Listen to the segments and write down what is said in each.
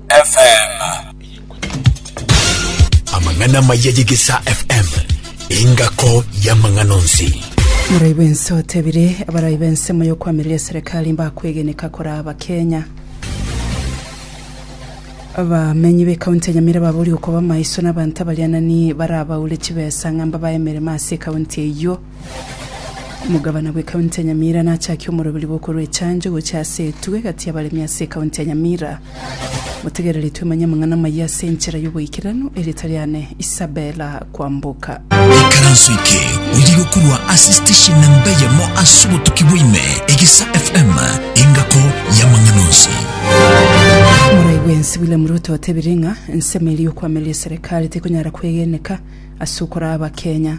FM. amang'ana maya yegesa fm engako y'amang'ana onsi Morai bwense otebire abarai bense moyo kwamiria serikali mbakwegeneka kora abakenya abamenyi b'ekaunti ya nyamira babori okoba maiso n'abanto abarianani barabaure chibesa ng'a mbabae emeremo ase ekaunti eyio Omogabana bw'Ekaunti ya Nyamira nachakie omoroberi bw'okorwa echancho gochia ase etugo egati y'abaremi ase Ekaunti ya Nyamira. Motegereretwe manye amang'ana amaya ase enchera y'oboikeranu, erieta riane Isabella Kwamboka. Ikaranso eke oyige korwa ase station namba eyemo ase obotuki bwaime, Egesa FM, engako y'amang'ana onsi. Morai bwensi William Ruto otebire ng'a ensemo eria y'okwamiria eserekari tekonyara kwegeneka ase okoraa Abakenya.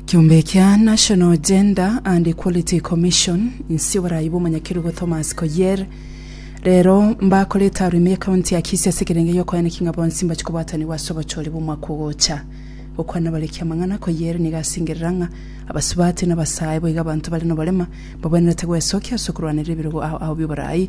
Ekiombe kia National Gender and Equality Commission inse oborayi bw'omonyakerugo Thomas Koier rero mbakorete arwa ime y'ekaunti ya Kisii ase ekerenge gi'okoeneki ng'a bonsi mbache kobwatanigwa ase obochori bw'omwaka ogocha. Gokwana abareki amang'ana, Koier nigo asengerera ng'a abasubati na abasae boigo abanto bare noborema mbabwenerete gwesokia ase okorwanera ebirogo ao ao bi'oborayi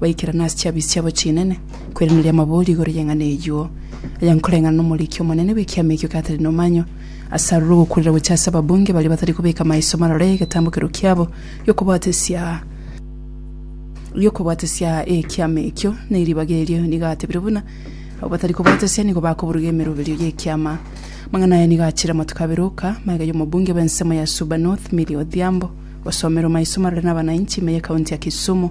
Baikerana ase chiabi chiabo chinene, kweraneria amabori igoro y'eng'ana eyio, aya nkoreng'ana n'omoriki omonene bw'ekiama ekio Catherine Omanyo, ase aroro ogokurera gochia ase ababunge baria batari kobeka maiso marore egetambo keru kiabo gi'okobwatesia gi'okobwatesia ekiama ekio ne ribaga erio, nigo atebire buna abo batari kobwatesia nigo bakoburuga emeroberio y'ekiama. Amang'ana aya nigo achire amatuko abere oka, magega y'omobunge bw'ensemo ya Suba North Milly Odhiambo, gosomerwa maiso marore n'abanainchi ime y'ekaunti ya Kisumu,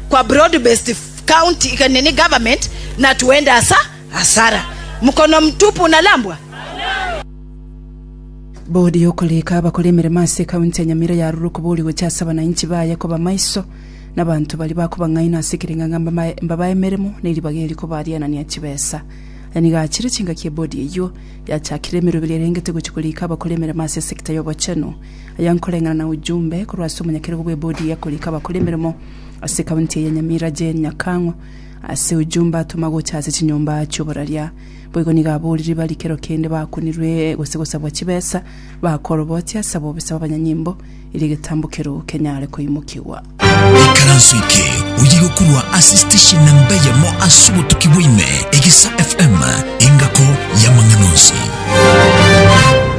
kwa broad-based county nini government na tuende asa asara mkono mtupu unalambwa. Bodi y'okorika abakore emeremo ase County ya Nyamira yarurwe kobori gocha ase abanainchi baye koba maiso na abanto baria bakobang'aina ase ekereng'ang'a mbamae mbabae emeremo na eribaga eri kobarianania chibesa. Aya nigo achire chingaki ebodi eyio yachakire emeroberio erengete gochia korika abakore emeremo ase esecta y'obochenu. Aya nkoreng'ana na ujumbe korwa ase omonyakerogo bw'ebodi y'ekorika abakore emeremo ase ekaunti eye ya Nyamira Jane Nyakang'o ase ojumbe atoma gocha ase chinyomba chi'oboraria. Boigo nigo aboriri bari kero kende bakunirwe gose gosabwa chibesa bakorobotia ase abobisa b'abanyanyimbo eri egetambo kerou kenyare koimokigwa. Ikaranso eke oye gokorwa ase station namba eyemo ase obotuki bwaime Egesa FM engako y'amang'ana onsi.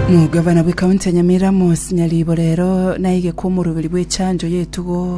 Omogavana bw'ekaunti ya Nyamira Moses Nyaribo rero naigekwa omoroberi bw'echanjo y'etugo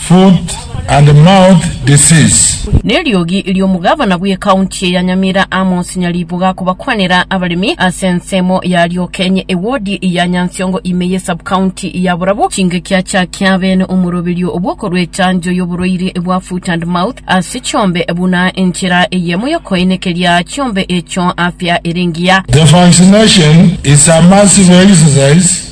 Foot and mouth disease. Neriogi riomogabana bw'ecounty eye ya Nyamira Amos Nyaribuga kobakwanera abaremi ase ensemo ya Riokenyi ewodi ya Nyansiongo ime ye subcounty ya Borabu chingaki achakia abene omoroberio obwokorwa echanjo y'oborwaire bwa foot and mouth ase chiombe buna enchera eyemo yokoenekeria chiombe echo afya ere engiya. The vaccination is a massive exercise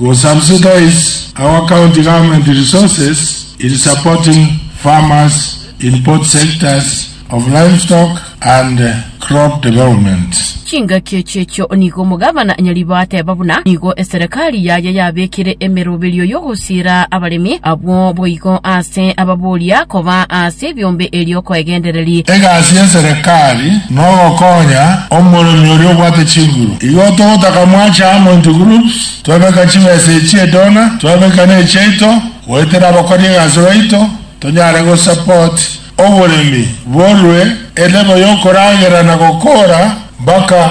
will subsidize our county government resources in supporting farmers in both sectors of livestock and crop development. Chingaki echi echio nigo omogabana Nyaribo ateba buna nigo eserekari yaye yabekire emeroberio y'ogosiera abaremi abwo boigo ase ababoria koba ase ebiombe erio koegendereri. Egasi y'eserekari nogokonya omoremi oria obwate chinguru. Igo togotaka mwache amo into groups, twebeka chibesa echie donor, twebeka nechiaito goetera abakori egasi baito, tonyare go support oboremi borue elevel yokoragera na gokora mpaka.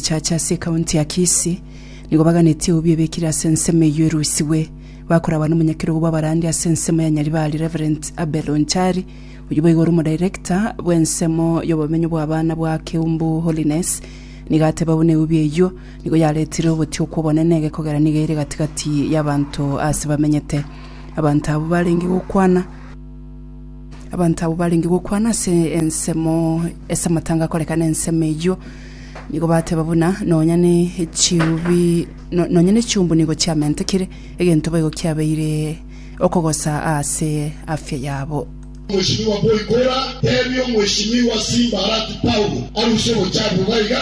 Echache ase ekaunti ya Kisii nigo baganetie obuya ebekire ase ensemo eyio erusigwe. Bakoragwa nomonyakerogo bw'abarandi ase ensemo ya Nyaribari Rev. Abel Onchari, oyio boigo ore omodirector bw'ensemo y'obomenyo bw'abana bwa Keumbu Holiness nigo ateba buna ebuya eyio nigo yaretire ogotiga okw'obonene gekogera nigo ere gati-gati y'abanto aase bamenyete. Abanto abwo barenge gokwana. Abanto abwo barenge gokwana ase ensemo ase amatanga akoreka nensemo eyio, nigo bateba buna nonya ne chiubi no- nonya ne chiumbu nigo chiamentekire, egento boigo kiabeire okogosa ase afya yabo. Omweshimiwa Boigora, tebia Omweshimiwa Simbarati Paulo aruse obochafu iga iga.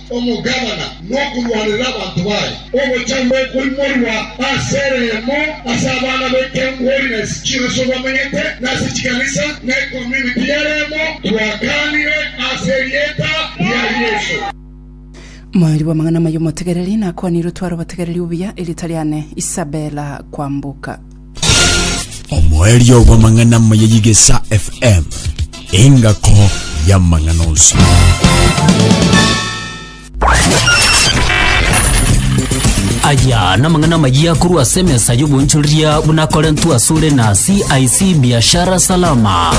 omogabana nokorwanerera abanto baye, ogocha gokoimorwa ase ereemo ase abana baito holiness chionsi bamenyete, na ase chikanisa na ecommunity y'ereemo twakaanire ase erieta ria Yeso. Moerio bw'amang'ana amaya omotegereri, nakwanire otware obotegereri obuya, erieta riane Isabella Kwambuka. Omoerio bw'amang'ana amaya y'Igesa FM, engako y'amang'ana onsi. aya namang'ana amaya korwa ase emesa y'oboonchoreria buna akorentwe asore na cic biashara salama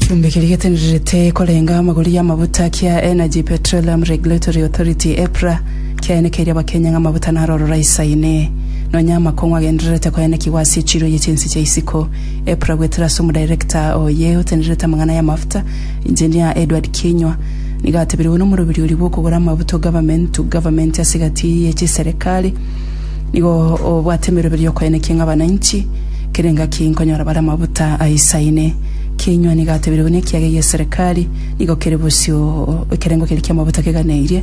Chumbi kiri gitenderete korenga amagori y'amabuta kia Energy Petroleum Regulatory Authority EPRA Kiaenekeirie abakenya ng'a amabuta narorora isaine, nonya amakong'u agendererete koenekigwa ase echiro ye chinse chia isiko. Epra goetera ase omodirector oye otenerete amang'ana y'amafuta, Engineer Edward Kinyua, nigo atebiregwe nomorobiri oria bw'okogora amabuta o Government to Government ase egati ye chiserekari, Nigo obwate emeroberi y'okoenekia ng'a abananchi kera engaki nkonyora bare amabuta aisaine. Kinyua nigo atebiregwe ng'a ekiaga egeserekari nigo kere bosio ekerengo keria ki'amabuta keganeirie,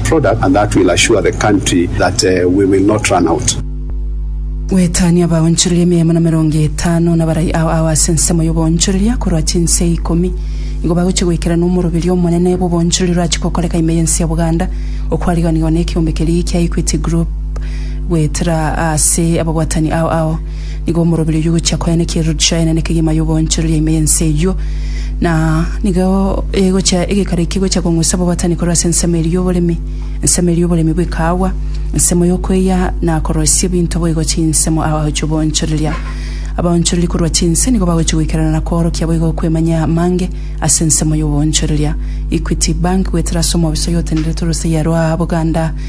product and that will assure the country that we will not run out. Goetania abaonchoreria emeyomo na merongo etano nabarai ao ao ase ensemo y'oboonchoreria korwa chinsee ikomi. Nigo bagochia goikerana omoroberio omonene bw'oboonchoreria orachie gokoreka ime y'ense ya Buganda, okwariganiwa nekeombe keria gia Equity Group goetera ase ababwatani ao ao. Nigo omoroberio oyio ogochia koenena ekerori chiaenena ekegima y'oboonchoreria ime y'ense eyio, na nigo egochia egekaro ekio egochia kong'usa obobwatani korwa ase ensemo eria y'oboremi, ensemo eria y'oboremi bw'ekaagwa, ensemo y'okweyia na koroisia ebinto boigo chinsemo ao chi'oboonchoreria. Abaonchoreri korwa chinse nigo bagochia goikerana na koorokia boigo okwemanyia amange ase ensemo y'oboonchoreria. Equity Bank, Goetera ase omoofiso oyo otenenerete orosegi arwa Buganda,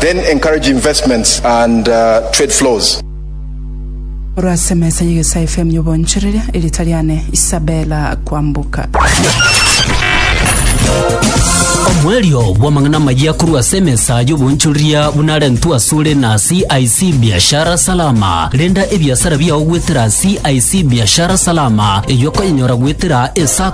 Then encourage investments and trade flows. Orwa ase emesa y'egesae FM y'obonchoreria, erita riane Isabella Kwambuka. Omoerio bw'amang'ana amayia korwa ase emesa y'obonchoreria buna arentwe asore na CIC Biashara Salama. Renda ebiasara biao goetera CIC Biashara Salama, eyio okonyenyora goetera esako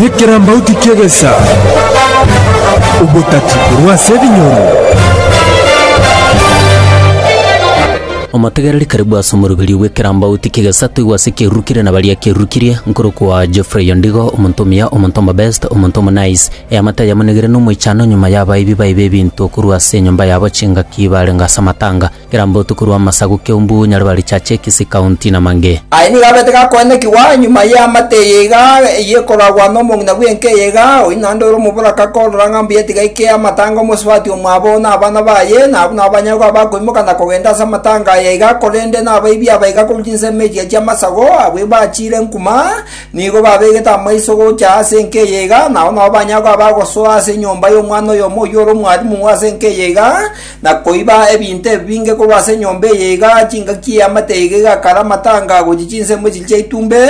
Nekerambauti ki'egesa, obotati korwa ase ebinyoro. Omotegereri karibu ase omoroberio bw'ekerambauti ki'egesa toigwe ase ekirurukirie na baria ekirurukirie, nkorokwa Geoffrey Ondigo, omonto omuya, omonto omobest, omonto omonice. Eamate ayamonigire nomoichano nyuma y'abaibi baye b'ebinto korwa ase enyomba yabo chingaki barenge ase amatanga. Kera mbotuko rw'amasagu kiumbu nyareba richache Kisii County na mange. Aye nigo abete gakoenekigwa nyuma y'eamate eye iga y'ekoragwa nomong'ina bw'enka eye iga, oyio naende ore omoboraka korora ng'a mbuya tiga aike amatanga omosubati omwabo na abana baye, na abwo nabanyagwe abakoimoka na kogenda ase amatanga aya iga, korende nabaibi aba iga korwa chinsemo echiya chi'amasagu, abwo bachiire enkuma, nigo babegete amaiso gocha ase enka eye iga, nao nabo banyagwe abagosoa ase enyomba y'omwana oyomo oyio ore omwarimu ase enka eye iga, na koiba ebinto ebinge korwa ase enyomba eye iga chingaki y'eamate iga egakara amatanga gochia chinsemo echiria chia itumbe,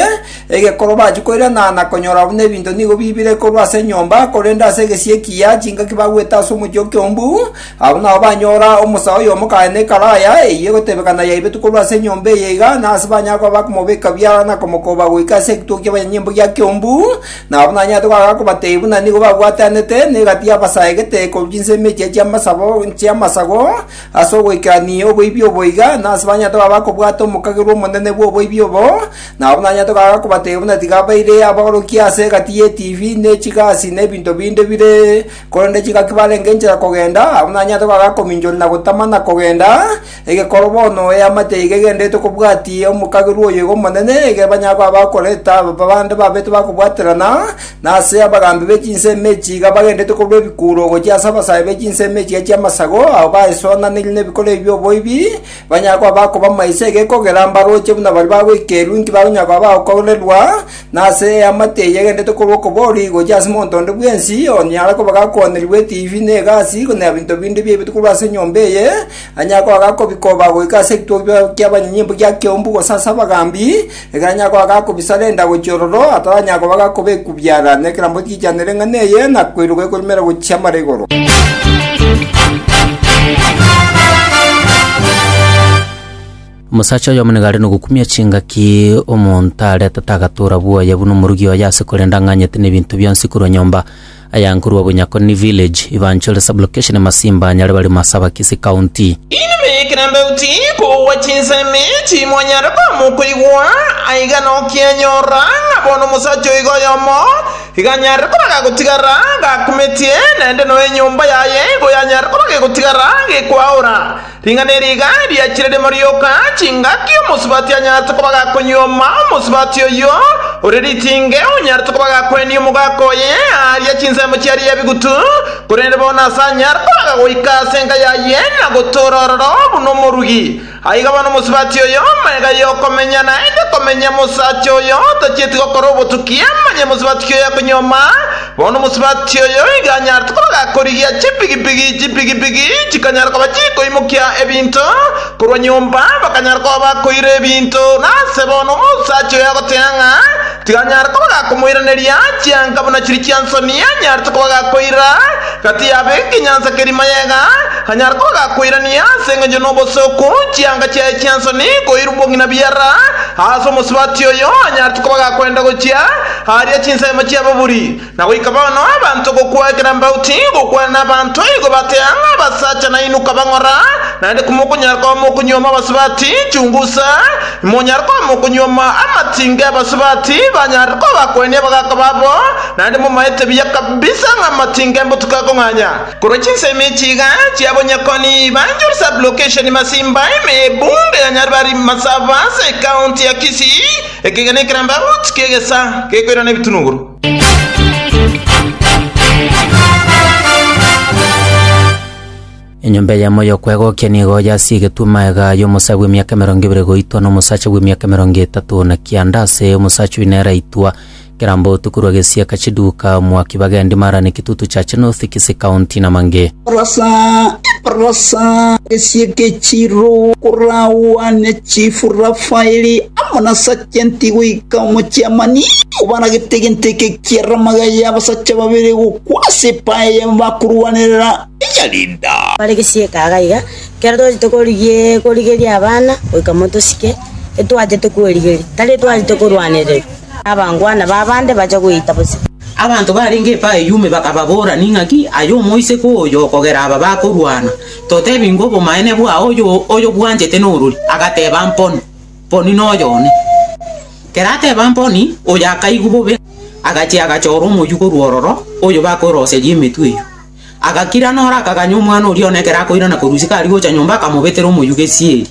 egekoro bachia koirana na konyora buna ebinto nigo biibire korwa ase enyomba, korende ase egesie kia chingaki bagwete ase omochie o Kiombu, abwo nao banyora omosa oyomo kaye ne ekaraya eyio egotebekana yaibetwe korwa ase enyomba eye iga, na ase banyare koba bakomobeka biara na komokoba goika ase ekituo ki'abanyanyimbo gia Kiombu, Nabo buna nanyarete goaka kobatebia buna nigo babwatanete negati y'abasaa egete korwa chinsemo echia chi'amasabo chi'amasago ase ogoikerania oboibi obo iga, na ase banyarete koba bakobwata omokagerwa omonene bw'oboibi obo. Nabo buna nanyarete goaka kobatebia buna tiga baire abaorokia ase egati y'etibi, ne chigasi, na ebinto binde bire, korende chingaki barenge enchera kogenda, abwo nanyarete goaka kominchoria na gotama na kogenda, Egekoro bono eamate eye egegenderete kobwatia omokagerwa oyo iga omonene, ege banyagwe abakoreta abande babete bakobwaterana, na ase abagambi be chinsemo echi iga bagenderete korwa ebikuro gochia ase abasae be chinsemo echiga chi'amasago, abwo baesonanirie nebikoro ebi by'oboibi, banyagwe abakoba amaiso egekogera mbaroche buna baria bagoikerwa, inki bakonyagwa abagokorerwa, na ase eamate eye egenderete korwa okobori gochia ase monto onde bwensi, onye ara koba gakoonerigwe etibi, na egasi, na ebinto binde biaibetwe korwa ase enyomba eye, Onye kwaga kobikoba goika ase ekitogbia ki'abanyinyi mbu gia keumbu gose ase abagambi, ekero onye kwaga kobisa renda gochia ororo, ataranyara koba gakoba ekubiara, nekerambe otiichanere eng'ana eye, na koiroka ekorumera gochia amara igoro. Omosacha oyomo niga are nogokumia chingaki omonto aretete agatura bwoye buna omorugi oye ase korenda ang'anyete nebinto bionsi korwa nyomba. Ayankorwa Bunyakoni Village, Ibanchore Sub-Location Masimba, Nyaribari Masaba-Kisii County. Inwe ekero ndauti kobua chinsemi timonyare koamwa koigwa, aiga nokianyora ng'a bono omosacha oiga oyomo iga anyare koba gagotigara gakumetie, naende noe enyomba yaye igo yanyare koba gegotigara gekwaora. Ring'ana eri iga riachire rimo rioka, chingaki omosubati anyarete koba gakonyuoma, omosubati oyio ore ritinge onyarete koba gakwenia omogaka oye aaria chinsemo chiarie ebigutu, korende bono ase anyare koaga goika ase enka yaye na gotoora ororo buna omorugi. Aiga bono omosubati oyo magega y'okomenya naende komenya, mosacha oyo tachieti gokora obotuki amanye omosubati ki oyakonyuoma, Bono omosubati oyo iga anyarete kobaga korigia chipigipigi, chipigipigi chikanyara koba chikoimokia ebinto korwa nyomba, bakanyara koba bakoira ebinto. Nase bono omosacha oyo agoteea ng'a tikanyare kobaga komoiraneria, chianga buna chiri chi'ensoni anyarete kobaga koira gati yabo egenyansa keria mayega, anyare kobaga koirania ase engencho n'obosooku chianga chiaye chi'ensoni koirwa obong'ina biara. Aase omosubati oyo anyarete kobaga kwenda gochia. Aria chinsemo chi'ababuri, na goika bono abanto gokwa ekero mbao tigokwana nabanto igo batea ng'a abasacha nainwe kabang'ora, naende komokonyara koba mokonyuoma abasubati chungusa, imonyare koba mokonyuoma amatinga y'abasubati banyarire kobakwenia abagaaka babo, naende momaete buya kabisa ng'a amatinga embotuko akong'anya. Korwa chinsemo echi iga chiabonyekoni Banjul Sub-Location Masimba ime ebunge ya Nyaribari Masaba ase ekaunti ya Kisii. Ekegena ekerambe agochika egesaa gekoirana ebitunuguru. Enyomba eyemo y'okwegokia nigo yasigetwe magega y'omosae bw'emiaka emerongo ebere goitwa nomosacha bw'emiaka emerongo etato na kianda ase omosacha oyio nere aitwa Kera mbotuko rwa gesiaka chiduka, mwaki bagendi mara ne kitutu cha chinothi kisi kaunti na mange. Rosa, rosa gesiaka echiro koragwa ne chifu Rafaeli amo na sajenti goika omochiamani obaragete egento eke kia ramaga y'abasacha babere gokwa ase epae ya bakorwanerera eya Lida. Bare gesiaka aga iga, kera twachete korigeria abana goika motosike, etwachete kwerigeria, tari etwachete korwanererwa. Abangwana b'abande bacha gweita bosio. Abanto barenge epa eyio ime bakababora, Ning'aki aye omoiseke oyo okogera aba bakorwana? Totebi ng'a obomaene bwao oyobwanchete norori? Agateba, Mponi, mponi noyo one. Kerateba mponi, oyo akaigwa bobe, agachia agachora omoyio korwa ororo, oyo bakweroseria emetwe eyio. Agakira noro akaganya omwana oria one ekero akoirana korusia kari gocha nyomba akamobetera omoyio gesieri.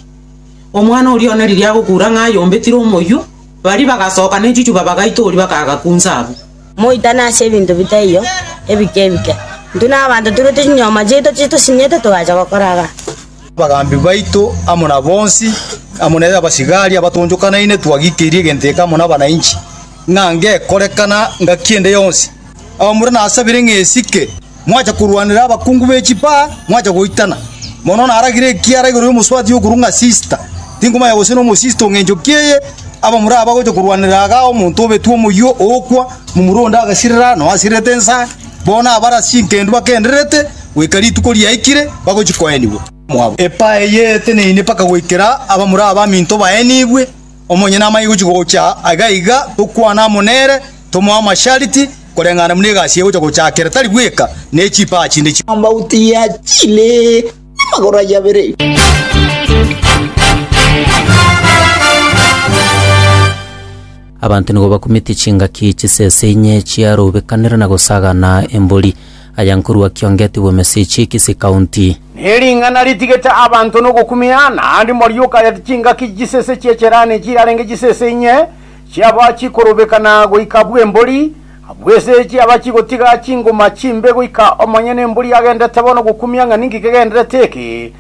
Omwana oria one riria agokura ng'a ayombetire omoyio, Baria bagasoka nechuchuba bagaita oria bakagakunsa abwo. Moitane ase ebinto bitaiyo ebike ebike. Intwe nabaanto toirwe chinyoma chiaito chie tosinyete togacha gokora agato. Abagambi baito amo na bonsi, amo na abasigari abatoonchokanaine twagikeirie egento eke amo nabananchi, ng'a ngekorekana ngaki ende yonsi. Abamura nasabire ng'a esike. mwacha korwanera abakungu be chipaa, mwacha goitana. Mono naragire ekiara igoro y'omosubati okorwa ng'a sisita, tinkomanya gose nomosisita ong'encho ki'eye, abamura aba gocha korwanera iga omonto obetwe omoyio ookwa, momura onde agasirera, na oasirerete ensa, bono abare ase chinkendu bakendererete, goika rituko riaikire, bagochia koenigwa. Epaa eye eteneine mpaka goikera abamura aba aminto baenigwe. Omonyene amanye gochia gocha aiga aiga, tokwane amo nere, tomoe amashariti, koreng'ana buna egasi eye egocha gochakera, tari bweka ne chipaa chinde chionsi. Amauti ya chile namagoro ayio abere. Abanto nigo bakumete chingaki chisese inye chiarobekanera na gosagana embori. Aya nkorwa Kiongeti bw'Emesich, Kisii County. Nering'ana ritigete abanto nogokumia, naende morioka ya chingaki chisese chi'echerani chirarenge chisese inye, chiaba chikorobeka na goika bw'embori, abwo ase chiaba chigotiga chingoma chimbe goika omonyene embori agendete bono gokumia ng'a ninki kegenderete eke.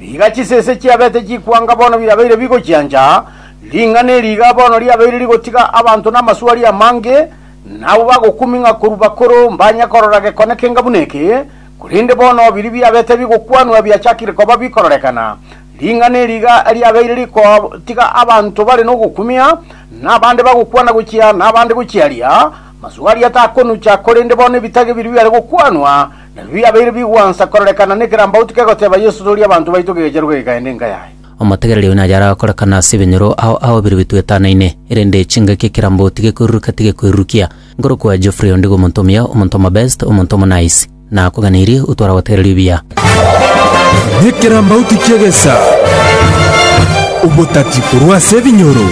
Riga chisese chiabete chikwanga bono birabeire bigochiancha, ring'ana eri iga bono riabeire rigotiga abanto namaswari amange, Na abwo bagokuming'a korwa bakoro mbanye korora gekone kenga buna eke, korende bono biria biabete bigokwanwa biachakire koba bikororekana. Ring'ana eri iga riabeire rigotiga abanto bare nogokumia, na abande bagokwana gochia, na abande gochia aria. Masugo aria takonucha, korende bono ebitage biria biare gokwanwa nabio biabeire bigwansa kororekana nekerambauti kegoteba, Yeso, toria abanto baito gegecheru gekaende enka yaye. Omotegereria oyo naye aragokorekana ase ebinyoro ao ao biria bitwetanaine, erende chingaki ekeramboti gekoiruruka tigekoirurukia. Nkorokwa Geoffrey onde iga omonto omuya, omonto omobest, omonto omonice. Nakoganeirie, otware agotegereria obuya. Nekerambauti ki'egesa, obotati korwa ase ebinyoro.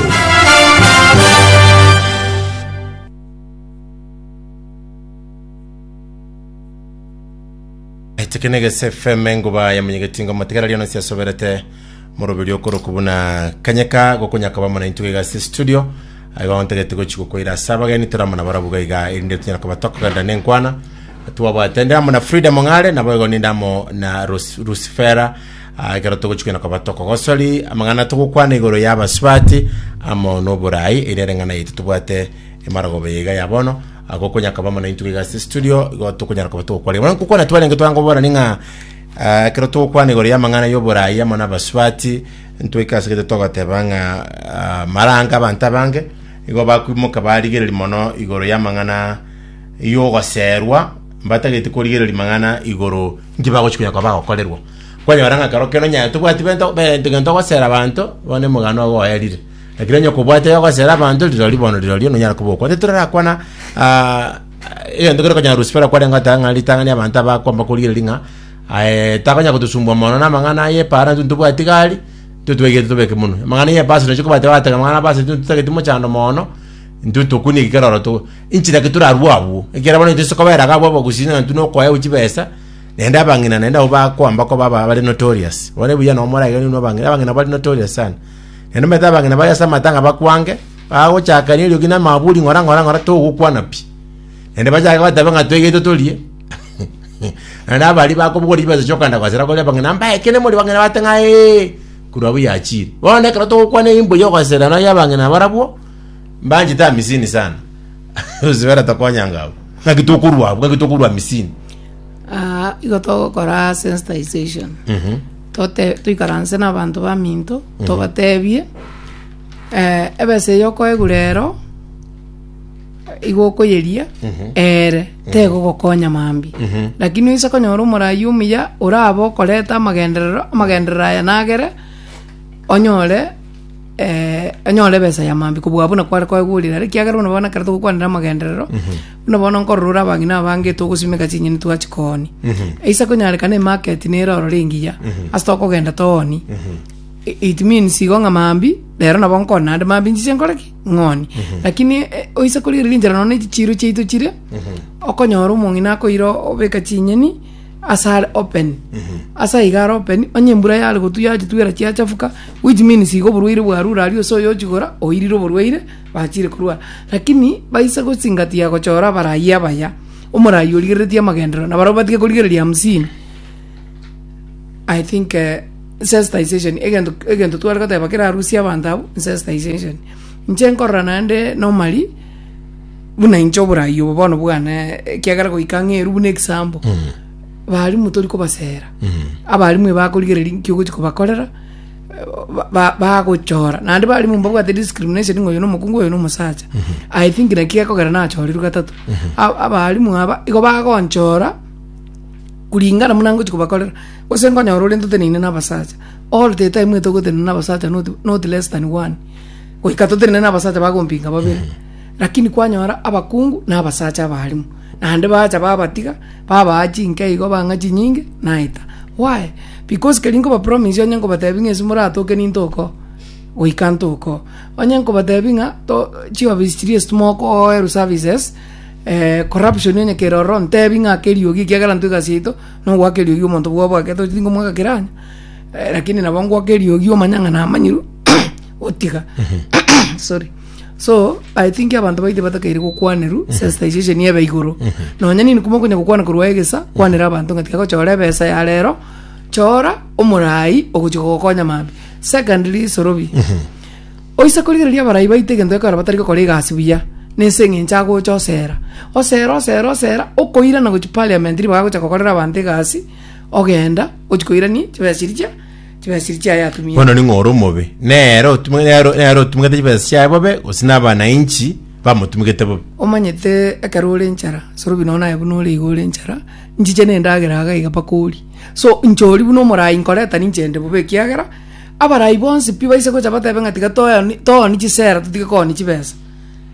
Echeke negese efeme enguba ya monyegetingo motigara riona siasoberete morobiri okoroku buna kanyeka gokonya koba mona intuga igase studio aigo ontagete gochi gokoira ase abageni toramana barabu gaiga erinde tunyara koba tokogenda nenkwana twabwate ende amo na Frida Mong'are nabo igo ninde amo na Rus- Rusifera Ah, ekero togochi koina koba tokogosori amang'ana togokwana igoro ya abasubati amo noborai ere ere ng'ana yaito tobwate emarogobe yaiga ya bono Agwo konya akaba amo naintwe iga ase studio, igo tokonyara koba togokwarera. Bono nkokwana twarenge twanga koborani ng'a ah, ekero togokwana igoro y'amang'ana y'oboraai amo n'abasubati, ntwaika ase gete togoteba ng'a ah, maranga abanto abange igo bakwimoka barigereri mono igoro y'amang'ana y'ogoserwa, mbatageti korigereri mang'ana igoro nki bagochi konya koba bagokorerwa. Kwanyora ng'a ekero kero onye tobwati bento be- egento gosera abanto, bono emogano ogo oerire. Ekero onye okobwate ogosera abanto rirorio bono rirorio nonyara kobokwa onde torarakwana ah, egento kere okonyara rusifera kwarenge goteba ng'a ritang'ani abanto abakwamba korigereria ng'a aye takonyara gotosumbua mono na amang'ana aye para intwe ntobwati gari intwe twegete tobeke munwe amang'ana ya ebasi nochi kobwate batega amang'ana abasi intwe tutageti mochando mono intwe tokunie kikero oro to inchira ki torarue abwo ekiagera bono intwe sikobera iga abwo abagusii ng'a intwe nokoewa chibesa naende abang'ina naende abwo bakwamba koba aba- bare notorious bono ebuya nomorage inwe abang'ina abang'ina bare notorious sana Na nomanyete abang'ina baria ase amatang'a bakwange, bagochakania eriogi na amaburi ng'ora ng'ora ng'ora togokwana pi. Naende bachake gotabe ng'a toigetwe torie. Na nabaria bakobogora chibesa chi'okogenda gosera koria abang'ina mba ekero mori bang'ina bate ng'a ee, korwa abwo yachire. Bono ekero togokwana eimbo y'ogosera nonya abang'ina barabwo, mbanchete amisini sana. Gose baratokonyango abwo. Ng'aki tokorwa abwo, ng'aki tokorwa amisini. Aa, igo togokora sensitization. Mhm. tote- toikaranse nabanto baminto, tobatebie, eh, ebesa eyio okoegure ero, igo okoyeria, ere tegogokonya mambia. Lakini oise konyora omorayi omuya orabe okoreta amagenderero, amagenderero aya nagere, onyore onyore ebesa ya mambia kobua abwo nakware koegurire ere, ekiagera bono bono ekero togokwanera amagenderero. Buna bono nkorora abang'ina abange togosimeka chinyeni twachi kooni. Eisa konyarekana emarket nere orore engiya ase tokogenda tooni. I- It means igo ng'a mambia rero nabo nkone naende mambia nchiche nkore ki? Ng'oni. Lakini eh, oise korigereria enchera nonya na echichiiro chiaito chire okonyora omong'ina akoira obeka chinyeni ase are open. Ase aiga are open onye embura yare gotwa yachitwera chiachafuka which means igo oborwaire bwarure aria ase oyochigora oirire oborwaire Bachire korua, lakini baisa gosingatiga gochora abarai abaya, omorai origereretie amagenderero, na barabwo batige korigereria hamsini. I think eh, sensitization egento egento tware goteba kerarusie abanto abwo sensitization. Inche nkorora naende normally buna inche oborai obo bono bwane ekiagera goika ng'eru buna example barimwe tori kobasera abarimu eba akorigereria nki ogochi kobakorera ba- bagochora naende barimo mbabwate discrimination ng'a oyo nomokungu oyo nomosacha i think naki gekogera nachorirwe gatato A- abaalimu aba igo bagonchora kuringana buna ngochi kobakorera gose nkonyora ore ntoteneine na abasacha all the time ete ogotenena na abasacha not, not less than one goika totenene na abasacha bagompinga babere lakini kwanyora abakungu na abasacha abaalimu naende bacha babatiga Babaa chinke igo bang'a chinyinge, naeta. Why? Because keri nkobapromise onye nkobatebi ng'a ase moratoke nintokoo, goika ntokoo. Onye nkobatebi ng'a to chiofisi chiria ase timokoorwa services, eh corruption onye kere ororo ntebi ng'a ake eriogi ekiagera intwe egasi yaito na ogoaka eriogi omonto bwabo ake tochi tinkomoaka kera onye, eh lakini nabo ngoaka eriogi omanye ng'a namanyirwe gotiga sorry. so i think abanto baito batakeire gokwanerwa mhm. sensitization ebe igoro mhm. nonya nini kuma okonya gokwana korwa egesa mhm. kwanera abanto ng'a tiga gochora ebesa ya rero chora omorai ogochia gokonya mambi secondly sorobi oise korigereria abarai baito egento gekora batari gokora egasi buya nese eng'encho agocha osera osera osera osera okoirana gochia parliament ribagocha gokorera abanto egasi ogenda ochi koirani chibesa chiria chia chibesiri chiaye atumia. Bono ning'o ore omobe? Nere otumwe- nere- nere otumegete chibesa chiaye bobe, gose nabananchi bamotumegete bobe? Omanyete ekero ore enchara sorobi nonya naye buna ore iga ore enchara nchiche na endagera iga iga mpaka orie so inche oria buna omorai nkoreta ninche inde bobe ekiagera abarai bonsi pi baise gocha batebe ng'a tiga toyoni tooni chisera totige kooni chibesa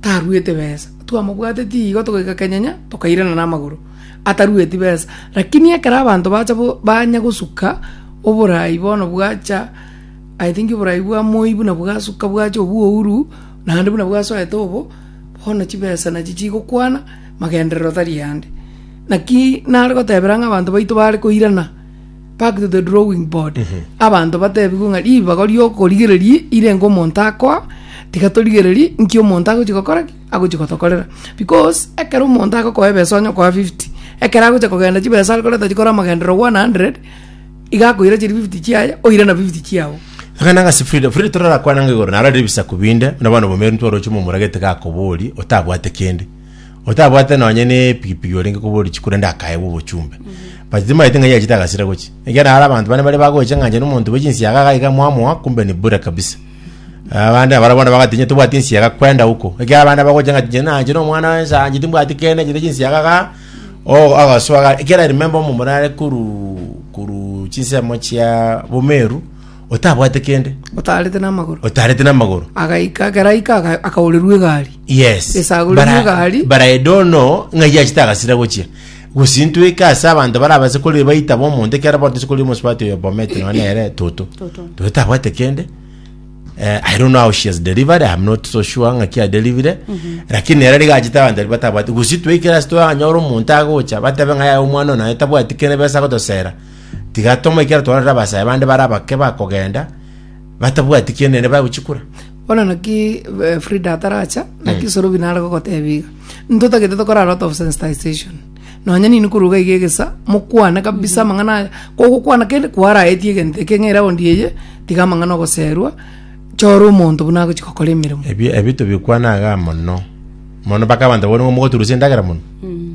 taruete besa, twamobwateti igo togaika kenyenya, tokairana namagoro, atarueti besa. Rakini ekero abanto bacha bo banya gosuka oborai bono bwacha, I think oborai bwa moi buna bwasuka bwacha obwouru, naende buna bwasoete obo, bono chibesa nachi chigokwana, magenderero tari ande. Naki nare gotebera ng'a abanto baito bare koirana. Back to the drawing board. Abanto batebigwe ng'a ribago ri'okorigereria irenge omonto akoa, tiga torigererie nki omonto agochi gokora ki? Agochi gotokorera. Because ekero omonto agokoa ebesa onye okoa 50, ekero agocha kogenda chibesa are koreta chikore amagenderero 100, iga akoira chiri 50 chiaye, oire na 50 chiago. Iga nagase Frida, Frida torarakwane ng'a igoro naro rire ebisaku binde, buna bono bono obomeeri ntwaroche momura gete gakoboria, otabwate kende. otabwate nonye nepigipigi orenge kobora richiku rende akaegwa obochumbe but timaeti ng'a yachete agasira gochi ekiagera are abanto bane bare bagocha ng'a inche na omonto bwe chinsiaga iga iga mwamoa kumbe ni bure kabisa abande abare bono bagati inye tobwati ensiaga kwenda huko ekiagera abande bagocha ng'a inche na inche na omwana wensa inche timbwati kende inche ne chinsiaga igaa oo agasoa iga ekiagera I remember omomura are koruu koruu chinsemo chia bomeru otabwate kende, otaarete namagoro otarete namagoro. agaika ekero aika aga- akaorerwa egari Yes. Esagure Bara- y'egari. Baraedo ono ng'ai achete agasira gochia. Gosintweka ase abanto barabase kore baita bo omonto ekero bono tose kori omosubati oyo bomete nonya nere toto. Toto. Toto tabwate kende. Eh, I don't know how she has delivered. I'm not so sure ng'aki adelivire. Lakini nere riga achete abanto baria batabwate. Gosintweka ase twanyora omonto agocha batabe ng'ai aye omwana oyo naye tabwati kende besa gotosera. Tiga tomoe ekiagera twarorire abasae bande bare abake bakogenda batabwati kiene naende bagochia kura. Bono naki eh, Frida ataracha naki mm. Sorobi nare gogotebia iga ntotagete tokora a lot of sensitization nonya nini koruga iga egesa mokwane kabisa mm-hmm. amang'ana aya kogokwana kende kwaraetie egento eke ng'era ondi eye tiga amang'ana ogoserwa chora omonto buna agochi gokora emeremo ebio tobikwana aga mono mono mpaka abanto bono mogoturusia endagera mono mm.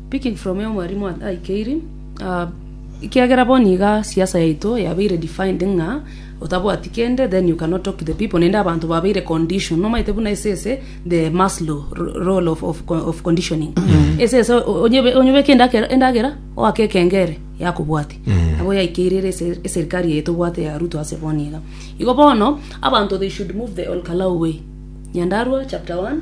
Picking from Aya omwarimu aikeiri, ekiagera bono iga siasa yaito yabeire defined ng'a otabwati kende then you cannot talk to the people naende abanto babeire conditioned nomaete buna ase ese the maslow role of of of conditioning ase ese onye onyebeke endakera endagera oake ekengere yakobwati nabo yaikeire ere ase eserikari eye tobwate ya ruto ase bono iga igo bono abanto they should move the olkalau way nyandarua chapter one.